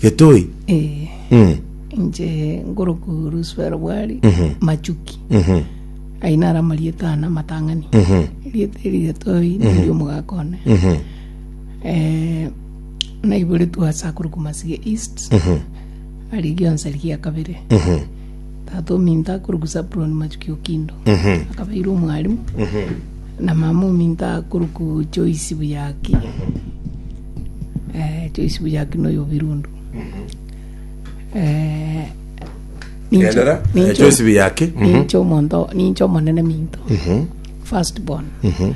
Getoi. Eh, Mm. inche ngoroku Ruswero Bwari Machuki. Aye nara amarieta ane amatang'ani. Erieta eri Getoi neri omogaka one. Eh, naiboretwe ase akoro Kumasige East. Ari gionsi ari gia kabere. Tata ominto akoroku Zabulon Machuki Okindo. Akabeire omwarimu. Na mama ominto akoroku Joyce Buyaki. eh, choisi buya akina oyo birundu eh, ninche- Endelea. ninche- Choice bi yake. Mhm. ninche omonto ninche omonene minto Mhm. first born Mhm.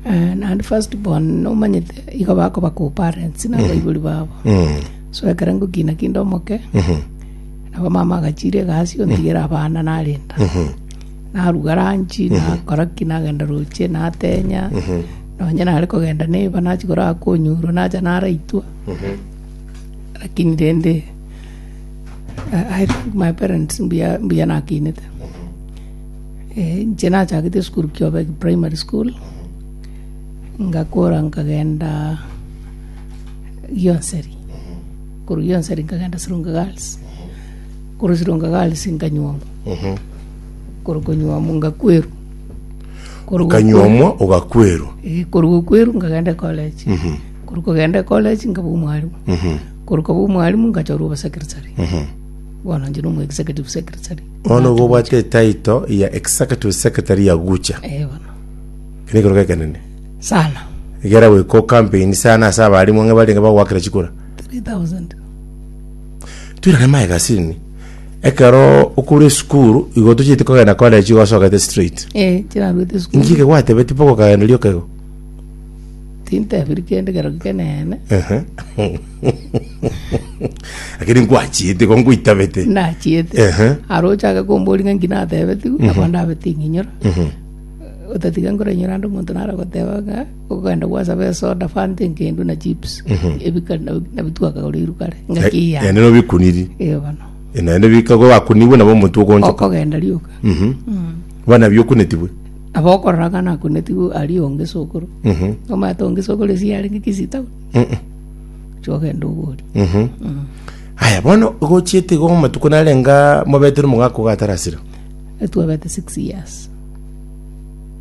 Eh, naende first born nomanyete igo bakoba ku parents na abaibori babo Mm. so ekere ngokina kinde omoke Mhm. nabo mama agachire egasi ontigere abana narenda Mhm. naruga ranchi, nakora ki, nagenda roche, natenya, nonye nare kogenda neba nachia korara konyurwa nacha naraitwa, lakini rende I- I think my parents mbuya mbuya nakinete. Eh, inche nachagete esukuru Kiobegi Primary School, ngakora nkagenda Gionseri, korwa Gionseri nkagenda Sirunga Girls. korosirwa ngagaris nkanyuomwa korwa konyuomwa ngakwerwa Korwa gokwe- okanyuomwa ogakwerwa Eh, korwa gokwerwa nkagenda ecollege korwa kogenda ecollege nkaba omwarimu korwa kaba omwarimu nkachorwa obosecretary bono nchire omo executive secretary bono igo obwate etaito ya executive secretary ya gucha Eh, bono kene ekero gekenene sana egera goika ocampaign sana ase abarimu ang'e barenge bagoakera chikura 3000 Toirane maega ase ime. Ekero okure esukuru, igo tochiete kogenda kwanera chigo osogete straight. Eh, chirarwete Inki sukuru. eke gwatebeti mpaka okagenda riria okego? Tintebiri kende ekero kekeneene. Ehe. Lakini nkwachiete igo nkwitabete. Nachiete. Ehe. Aro ochake kombori ng'a inki natebetigwe, nabo ndabeti ng'inyora. Otatiga nkorainyora ande omonto naro goteba ng'a Ogokenda gwasaba esoda, fanta enkendu, na chips, ebika nabio twakagora iru kare, ngaki Eh, iyane. yaani nobikuniri Ee bono. Eh, naende bika ko bakunibwe nabo omonto okonchoka Okogenda rioka. Mhm. bana biokunetigwe Aba okorora ng'a nakunetigwe ari onge sokoro. Mhm. Omanyete onge sokoro esi yarenge kisitau. Mhm. Ocha ogenda obori. Mhm. aya bono gochiete igo amatuko narenga mobetire omogaka ogatarasira Etwabete six years.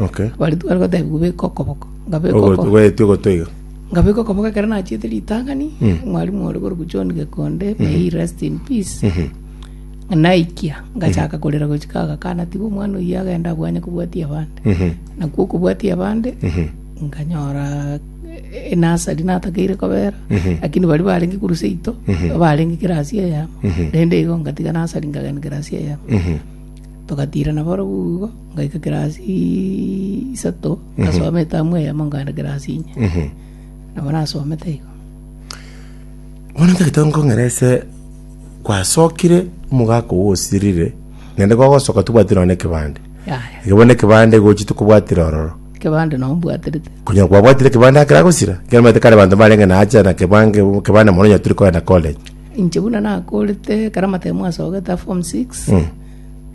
Okay. Baria tware gotebigwa beka okoboko, ngabeka Ogo- okoboko. Gweeti ogoto iga. ngabeka okoboko ekero nachiete ritang'ani mwarimu ore korwa john gekonde may he rest in peace naikia ngachaka korera gochika agakana tiga omwana oyio agenda abwanye kobwatia abande Mhm. nakwo okobwatia abande nkanyora eh, enasari natakeire kobera lakini bari barenge korwa seito barenge kirasi eyemo rende igo ngatiga nasari nkagenda kirasi eyemo Mhm. togatira naboro bugo Ngaika class isato ngasoma etamu eyemo nkagenda class inye nabo nasomete igo Bono ntagete nkong'ere ase gwasokire omogaka ogo osirire naende kwagosoka tobwati nonye na ekebande yaya igo bono ekebande igo ochete kobwatera ororo ekebande nabo mbwaterete konya kwabwatire ekebande akera gosira ekero omanyete kare abanto mbarenge na acha na kebange ekebande mono onye tari kogenda college inche buna nakorete ekero amatemo asogete a form six Mm.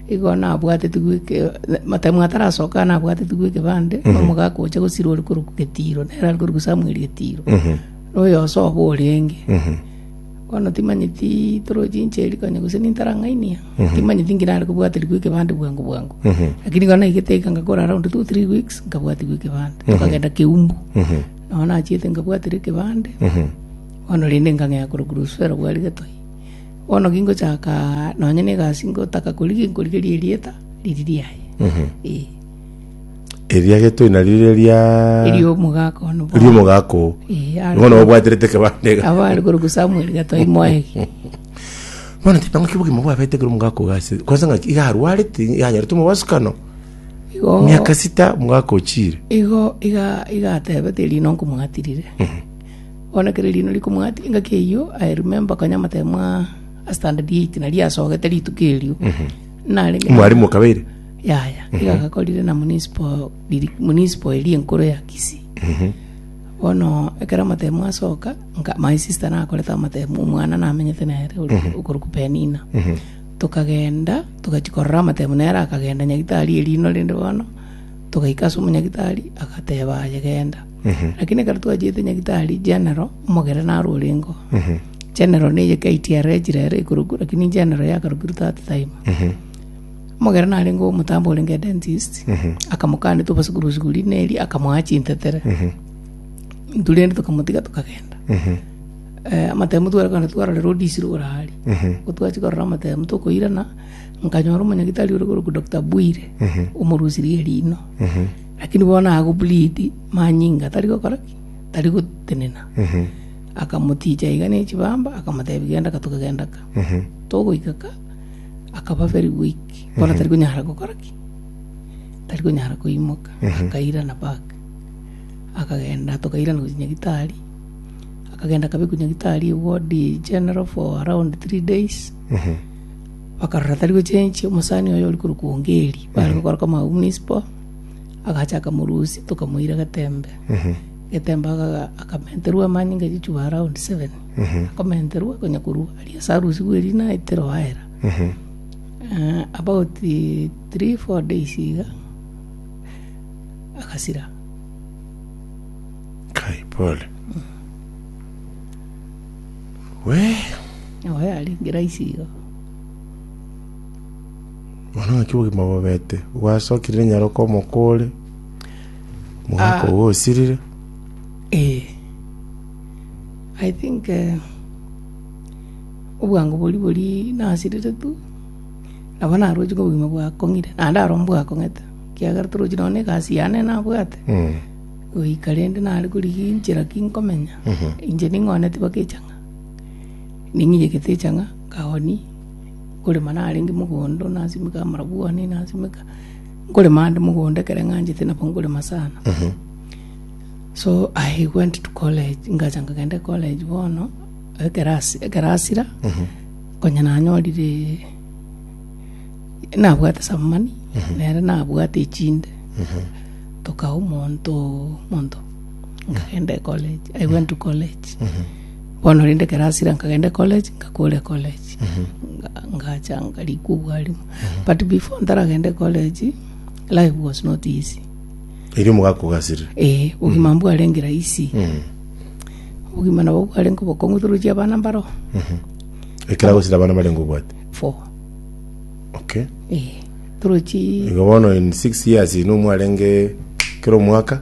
Igo nabwatetigwe eke, Mataimu atarasoka nabwatetigwe ekebande, na omogaka ocha gosirwa ore korokwa Getiro, nere are korokwa Samuel Getiro, na oyosoa obo orenge. Bono timanyeti toroche inche erio konya gose nintarang'ainia, timanyeti ng'ina are kobwaterigwa ekebande bwango bwango. Lakini igo naigete iga ngakora around two, three weeks, nkabwatigwa ekebande, tokagenda Keumbu. Nao nachiete nkabwaterwa ekebande, bono rende nkang'ea korokwa Luswero bwari Getoi. Bono gingochaka nonya negasi ngotaka korigia inkorigerie erieta riri riaye. Ee. Eria getoi nario riria Erio omogaka one bono. ria omogaka oo Ee, are bono obwaterete ekebande iga. abare korokwa Samuel gatoi moegi. bono tete naki obogima bwabete ekero omogaka oo gase kwansa ng'aki iga arwarete iga anyarete omobasukano Igo miaka sita omogaka ochire Igo iga iga atebete erinde nkomwatirire. Bono ekero erino rikomwatia engaki eyio, I remember konya amataiyo mwa ase standard eight nari yasogete rituko erio. Narenge na- Mwarimu okabeire? yaya iga agakorire na municipal diri- municipal eria enkoro ya Kisii. Bono ekero amatemo asoka nka my sister nakorete amatemo omwana namenyete nere ori- okorokwa Penina. Tokagenda togachia korora amatemo nere akagenda Nyagitari erino rende bono togaika ase omonyagitari agateba aye genda. Lakini ekero twachiete Nyagitari General, omogera naro orengo. General neye KTRA echire ere ekorokwa, lakini General yakarokirwe that time. Omogera narengeo omotambe orenge dentist, akamokani tobase korwa esuguri buna eria, akamoa chintetere. Intwe rende tokamotiga tokagenda. Eh, amatemu twarekogenda twarorera odisiru igoro aria. Ko twachia korora amatemu tokoirana, nkanyora omonyagitari ore korokwa Doctor Bwire, omorusirie erino. Lakini bono agwo Bridi manyinga tari gokora ki? Tari gotenena. Akamotiicha iga ne chibamba, akamotebia, Genda ka, togagenda ka. Togoika ka, akaba very weak, bono tari konyara gokora ki? Tari konyara koimoka. Akairana back, akagenda tokairana gochia nyagitari. Akagenda akabekwa nyagitari eye ward eye general for around three days. Bakarora tari gochenchia, omosani oye ore korokwa Ongeri, bare gokora koma au munisipo. agacha akamorusia tokamoira getembe. Getembe aga- akamenterwa amanyinga echichuba around seven. Akomenterwa konya korwa aria ase arusigwe eria naete Roaera. Eh, about three, four days iga agasira. kai pole we Nabo yarenge rahisi iga. Bono naki obogima bobete bwasokire rinyaroke omoko ore mogaka obo osirire. Ee, I think eh, obwango bori bori nasirire tu nabo narochi ng'a obogima bwakong'ire naende aro mbwakong'ete kiagera torochi nonya na egasi yane nabwate Mm. goika rende nare korigia enchera ki nkomenya inche ning'ooneti baka echang'a ning'iyegete echang'a nkaoni nkorema narenge mogondo, nasimeka amarabwani, nasimeka nkorema ande mogondo ekero ng'anchete nabo nkorema sana. So I went to college, ngacha nkagenda ecollege bono, ekero asi- ekero asira, konya nanyorire nabwate some money, nere nabwate echinde, tokae omonto monto, nkagenda ecollege, I went to college. Bono rende ekero asira nkagenda ecollege, ngakora ecollege, nga- ngacha nkarikwa obwarimu. But before ntaragenda ecollege, life was not easy. Erio mogakogasire. Eh, obogima mbwarenge rahisi. Obogima nabo bwarenge obokong'u through chia abana mbaro, Ekero agosira abana barenge obwate. four. Okay. Eh, through chi Igo bono in six years ino mwarenge kera omwaka.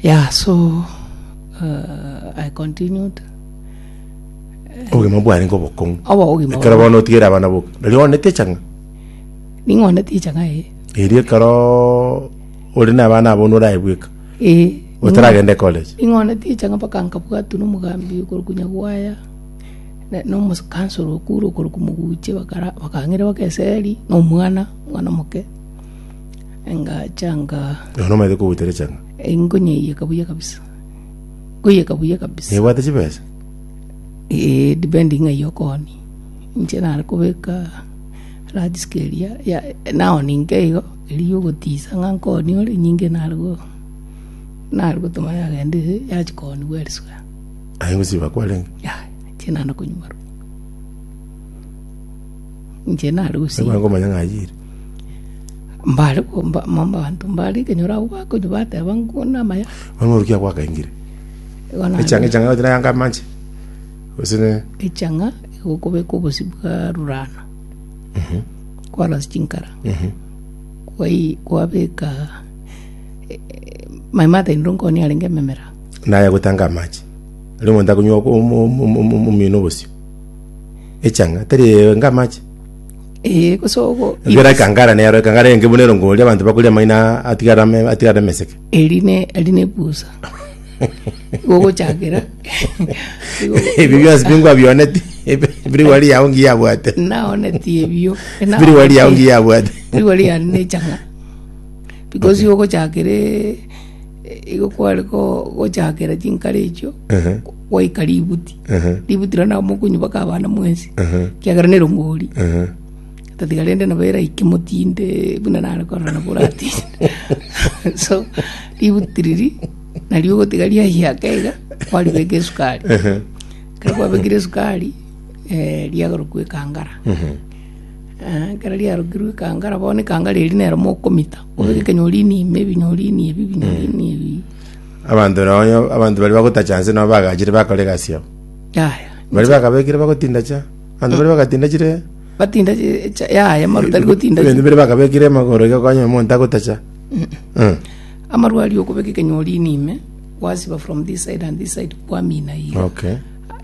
Yeah, so uh, I continued. obogima bwane ngobokong'u Obo obogima ekero bwane. bono otigere abana boka nari onete chang'a Ning'one ticha ng'aye. eri ekero ore nabana abo noraebweka Eh. otaragende college Ning'one ticha ng'a mpaka nkabwatwa nomogambi okorokwa Nyagwaya. Ne- Nomokansoro okure okorokwa Moguche bakara bakang'ira baka eseri nomwana, omwana omoke. Engachanga. Nonya nomaete kogoita rechang'a. Engonyeiyeka buya kabisa. Ngoyeka buya kabisa. Nebwate chibesa? Eh, depending ng'ai okooni. Inche nare kobeka large scale ya, ya naoni inke igo, erio ogotisa ng'a nkooni ore, nyinge nare go, nare gotoma yagenda ere, yachia kooniwa eriswe. Aye ngosiba kwarenge? Yaya, inche naende konywa barabwo. Inche nare gosiba. Ekero nkomanya ng'a ayire. Mbare komba mabanto mbare kenyora agwo bakonywa bateba ngwo namaya. Mang'ana orukia gwakaingire. Igo na Echanga echanga yote yanga manche. Gose ne echang'a igokobeka obosi bwa rurana. Kwarasi chinkara. Kwai kwabeka eh, eh, mai matainire nkoni arenge ememera. naye gotanga amache. Ari omonto akonywa omino obosio. Echanga tari enga amache. Ee, gose ogo Ebiara ibase- ekangara nero, ekangara eye ngebu nero ngoria abanto bakoria amaina atigare ame- atigare ameseke. eri ne eri nebusa igo ogochakera igo- Ebio bionsi bingo abioneti, biri wari yao ngiya abwate. naoneti ebio Biri wari yao ngiya abwate. biri wari yane nechang'a because igo ogochakere Igo kware gochakera chinkare echio gwaika ributi, ributi riria nabo mokonywa mpaka abana mwensi, ekiagera nerongori otatiga rende nabo eraike motinde buna nare korora nabo oratinde so ributi riria nario ogotiga riayaka iga kwaribeka esukari ekero kwabekire esukari riagarokwa ekangara ekero riarokirwe ekangara bono ekangara eria nero mokomita. Abanto na onye abanto baria bagotacha nse nabo bagachire bakora egasi yabo. Yaya. Baria bakabekire bagotinda cha. Abanto baria bagatinda chire Batinda chi- cha- yaya amaruta ari gotinda chi- ebinto biria bakabekire amagoro iga konya omonto agotacha. Eh. amarwa aria okobeka ekenyori ime ime kwasiba from this side and this side kwamina iga Okay.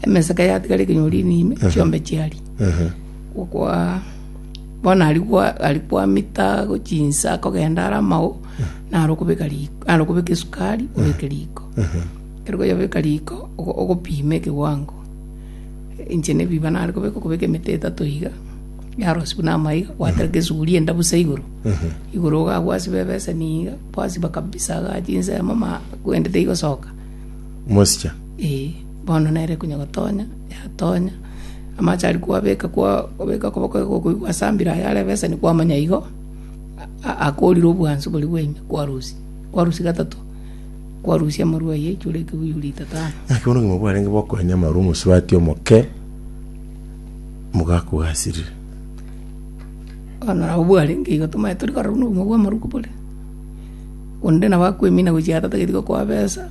emeseke yatigara ekenyori ime ime chiombe chiaria Ehe. gokwa Bono aria gwa- aria gwamita gochia inse akogenda are amao, naro okobeka riko, naro okobeka esukari, obeke riko. Ekero kwayebeka riko, ogo- ogopima ekewango. Inche na ebiiba nare kobeka, okobeka emete etato iga, yarosia buna amaiga, gwatereka esuguria enda bosa igoro, igoro iga agwo asiba ebeseni iga, kwasiba kabisa iga achia inse mama, kwende teigosoka. Mosicha. Eeh. Bono nere konya gotonya. yatonya. Amache aria kwabeka kwabeka okoboko igo okoigwa ase ambire aye are ebeseni kwamanya igo a- akoorire obwansu boria bwa ime kwarusia, kwarusia gatato, kwarusia amarwa aye aichore ekeguyu lita tano. Naki bono obogima bwarenge bokoenya amarwa omosubati omoke, mogaku gasirire. Bono nabo bwarenge igo tomanye tori korora buna obogima bw'amaruko bore, onde nabo akwemina gochia gatata gatiga koa besa.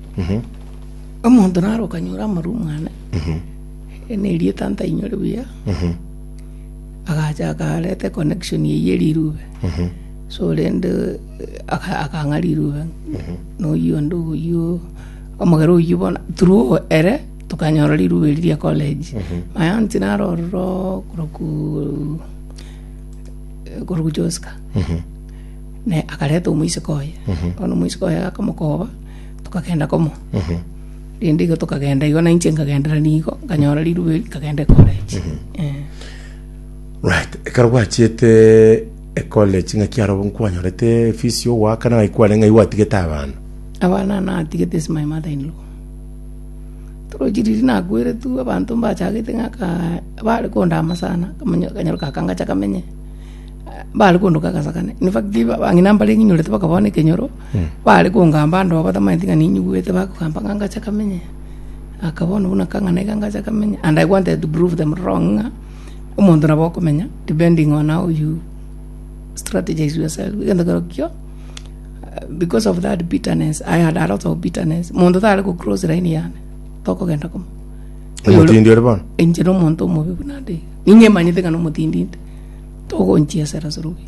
Omonto naro okanyora amarwa omwana, yaani erieta ntainyore buya, agacha akareta econnection eye ye rirube. So rende eh, aka- akang'a rirube noyio onde oyio omogere oyio bono through ere tokanyora rirube eri ria college. My aunt naro ororo koroku koroku Joska ne akareta omoiseke oye bono omoiseke oye akamokoba Tokagenda komo. Rende igo tokagenda igo na inche nkagendera nigo, nkanyora riruba eri, nkagenda ecollege. Eh. Right, ekero gwachiete ecollege ng'aki aro nkwanyorete fees yo goakana ng'aki kware ng'ai gwatigete abana? Abana natigete is my mother in law. Torochi riria nakweretwe abanto mbachagete ng'aka bare kondama sana, akamanya- akanyaroka aka ngacha kamenye, bare kondoka agasakane. In fact, ba- bang'ina mbare ng'inyorete bakaba bono ekenyoro. Baare kongamba ande oo batamanyeti ng'a ninyigwete bakogamba ng'a ngache kamenye aka bono buna aka ng'a naiga ngache kamenye and I wanted to prove them wrong ng'a omonto nabo okomenya depending on how you strategise yourself egento kerokio because of that bitterness I had a lot of bitterness monto tare go cross line yane tokogenda komo Omotindi ore bono? inche na omonto omobe buna ande iga ninyemanyete ng'a nomotindi nte togonchiesera sorobia.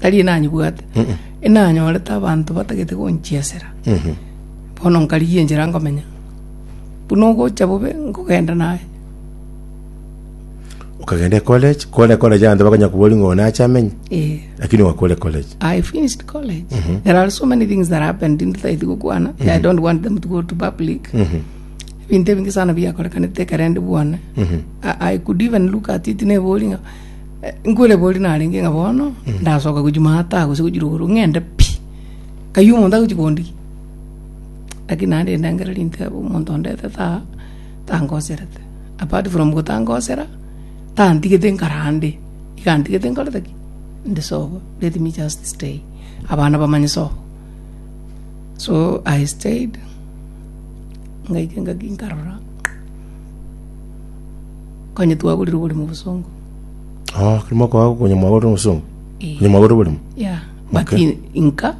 tari enanyebwate enanyorete abanto batagete gonchiesera bono nkarigia enchera nkomenya buna ogocha bobe nkogenda naye okagenda ecollege kore ecollege abanto bakonya kobori ng'o nache amenye eh. lakini wakore ecollege I finished college. There are so many things that happened in the gokwana. I don't want them to go to public. Ebinto ebinge sana biakorekanete ekero ndi bwane. I, I could even look at it nebori ng'a Nkwerebori narenge ng'a bono ndasoka gochia maata gose gochia rogoro ng'ende pi, kayio omonto agochia kondigia. Lakini naende endengera rintebe omonto ondetete aa tangoserete, apart from gotangosera, tantigete nkare ande, iga antigete nkorete ki? Inde sobo, let me just stay, abana bamanye sobo. So I stayed, ngaika engaki nkarora. Onye twaborire oborimo bosongo. Oh, kiri mokoa konya mwagorire obosongo. Eh. Konya mwagorire oborimo. Yeah. But Okay. in- inka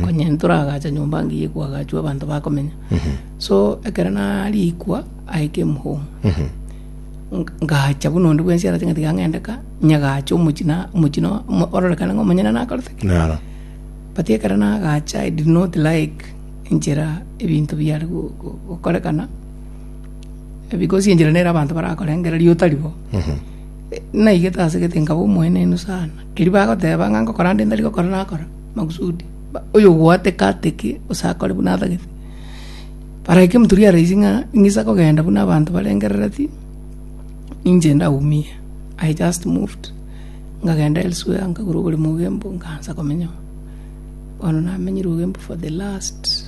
onye ntoragacha nyomba ngiye kwagachwa abanto bakomenya. So ekero narikwa I came home. Nk- ngacha buna onde bwensi arache ng'ati gang'endeka nyagacha omochina omochino omo- ororekane ng'a omonyene nakorete Naro. but ekero nagacha i did not like enchera ebinto biare go- go- gokorekana Because enchera nere abanto barakorengera riota ribo, naigete ase gete nkaba omoenenu sana. Erio bagoteba ng'a ngokora ande ntari gokora nakora, makusudi. Ba- Oyogwateka ateke gose akore buna atagete. Paraika emoturi ya rais ng'a ing'isa kogenda buna abanto barengerereti, ninche ndaumie, I just moved nkagenda elsewhere nkagura oboremo bwa embu nkaansa komenyamo. Bono namenyire Ugembo for the last.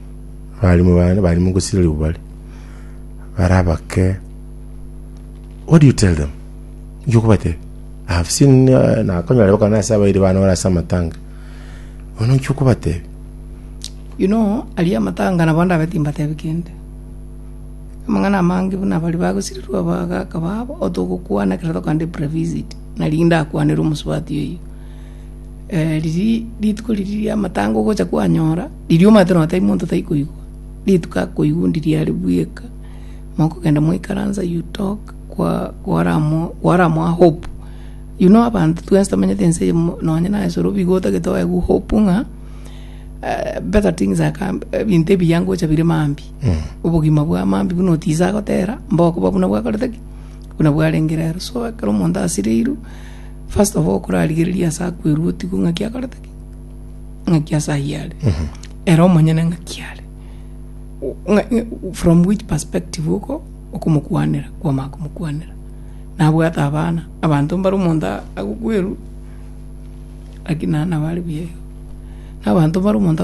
Abalimu bane bari mogosira ribu bare, barabake, What do you tell them? Inki okobatebia? I have seen uh, nakonyora bakana ase abairi bane ore ase amatanga. Bono inki okobatebia? You know, aria amatanga nabo ndabe timbatebi kende. Amang'ana amange buna bari bagosirirwa abagaka babo otogokwana ekero tokande previsit nari ndakwanere omosubati oyo. Eh, riri rituko riri ria amatanga ogocha kwanyora Riria omanyete nonya tari monto tai koigwa, rituko akoigwa undi riare bweka, mokogenda mwaikaransa you talk kwa kwaramo kwaramoa hope. You know abanto twensi tomenyete ense eye mo- nonya na esoro bigo otagete oe gu hope ng'a eh, better things are come ebinto ebiya ngocha bire mambi. Obogima bwa mambi buna oticha agotera mbokoba buna bwakorete ki? Buna bwarenge rero. So ekero omonto asireirwe, first of all okorarigereria ase akwerwe otigwe ng'aki akorete ki? ng'aki ase ayio are, ere omonyene ng'aki are, o- ng'a- ng'a- from which perspective oko okomokwanera kwamanya komokwanera. Nabwate abana, abanto mbare omonto a- agokwerwa, lakini naende nabo are buya iga, na abanto mbare omonto.